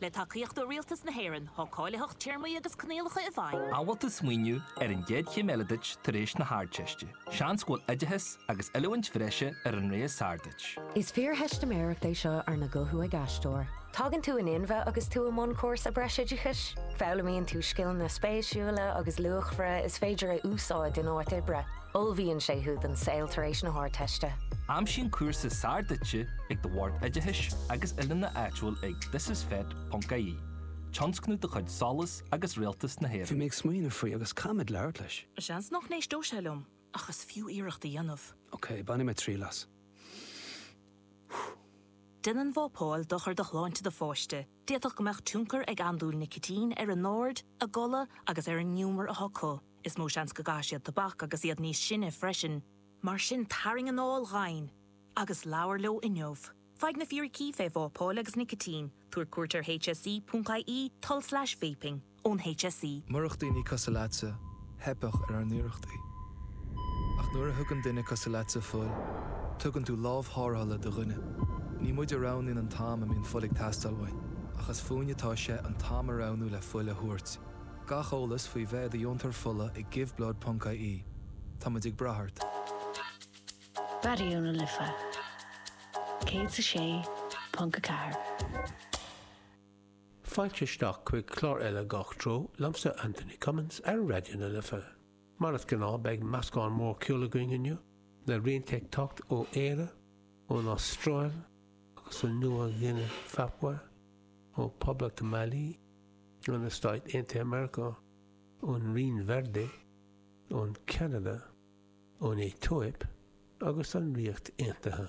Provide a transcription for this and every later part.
Le tacaíocht ó Rialtas na hÉireann, tá cáilitheacht, téarmaí agus coinníollacha i bhfeidhm. An bhfuil tú ag smaoineamh ar an gcéad chéim eile duit tar éis na hArdteiste? Seans go bhfuil oideachas agus oiliúint bhreise ar an rogha is fearr duit. Is fíortheistiméireacht é seo arna guthú ag aisteoir. Tagann tú in inmhe agus tú i mbun cúrsa breisoideachais. Foghlaimíonn tú scileanna spéisiúla agus luachmhara is féidir a úsáid in áit oibre. Ullmhaíonn sé thú don saol tar éis na hArdteiste. Aimsigh an cúrsa is fearr duitse ag do Bhord Oideachais agus Oiliúna áitiúil ag thisisfet.ie, tionscnamh de chuid SOLAS agus Rialtas na hÉireann. Bhí mé ag smaoineamh faoi agus caithfidh mé labhairt leis. Seans nach n-éisteodh sé liom, ach is fiú iarracht a dhéanamh. Ok, bainfidh mé triail as. Déanann vápáil dochar do shláinte do pháiste. D'fhéadfadh go mbeadh tionchar ag andúil nicitín ar a n-aird, a gcodladh agus ar an ngiúmar atá acu. Is mó seans go gcaithfidh siad tobac agus iad níos sine freisin. Mar sin tarraing anáil dhomhain agus labhair leo inniu. Faigh na fíricí faoi vápáil agus nicitín, tabhair cuairt ar hse.ie tulslais vaping. ón HSE. Murach daoine cosúil leatsa, theipfeadh ar ár n-iarrachtaí. Ach nuair a thugann duine cosúil leatsa fuil, tugann tú lámh tharrthála do dhuine. Ní muid a roghnaíonn an t-am a mbíonn fuil ag teastáil uainn, ach is fúinn atá sé an t-am a roghnú le fuil a thabhairt. Gach eolas faoi bheith i do dheontóir fola ag Giveblood ponc ie. Tá muid ag brath ort. Raidió na Life 106.4. Fáilte isteach chuig clár eile Gach Treo liomsa, Anthony Cummins, ar Raidió na Life. Mar is gnáth, beidh meascán mór ceoil againn inniu, le rianta ag teacht ó Éire, ón Astráil agus ó Nua-Ghuine Phapua, ó Poblacht Mailí, ó na Stáit Aontaithe Meiriceá, ón Rinn Verde, ón Ceanada, ón Aetóip agus an Ríocht Aontaithe.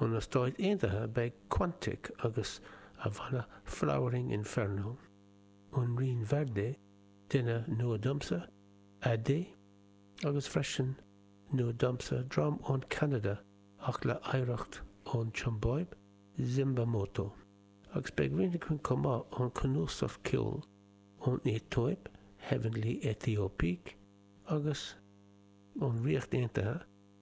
Ó na Stáit Aontaithe beidh Quantic agus a bhanna Flowering Inferno. Ón Rinn Verde, duine nua domsa, Ade, agus freisin nua domsa, dream ón Ceanada ach le hoidhreacht ón tSiombáib, Zimbamoto. Agus beidh rian againn chomh maith ón cnuasach ceoil ón Aetóip, Heavenly Ethiopiques, agus ón Ríocht Aontaithe,